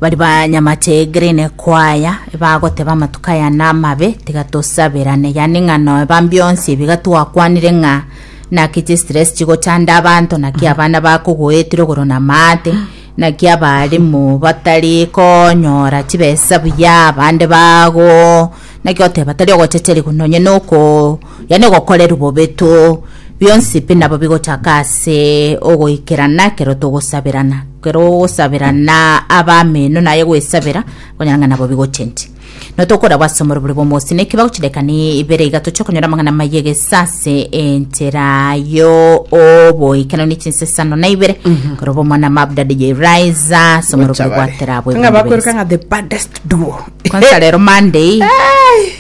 Baria banyamate green kwaya bagoteba amatuko aya namabe tiga tosabirane yani ng'a noeba mbionsi ebi iga twakwanire ng'a naki chistress chigochanda abanto naki abana bakogoetire igoro na maate naki abarimu batari konyora chibesa buya abande bago naki oteba tari ogochecheriwa nonye noko Yaani ogokorerwa bobe to, bionsi pi nabo bigochaka ase ogoikerana ekero togosaberana. Ekero ogosaberana abameno naye gwesabera, okonyora ng'a nabo bigochendia. No tokorabwa ase omorobori bw'omosini, eki bagochi dakikani ibere iga toche konyora amang'ana amaya egesa ase enchera yo oboikeranu ne chinsesano na ibere. Korwa obo omwana Mabda DJ Raiza ase omorobori Gochabare. bwa Terabwo Ng'a Ebundu bakwereka Base. ng'a the baddest duo. Kwanza rero Monday,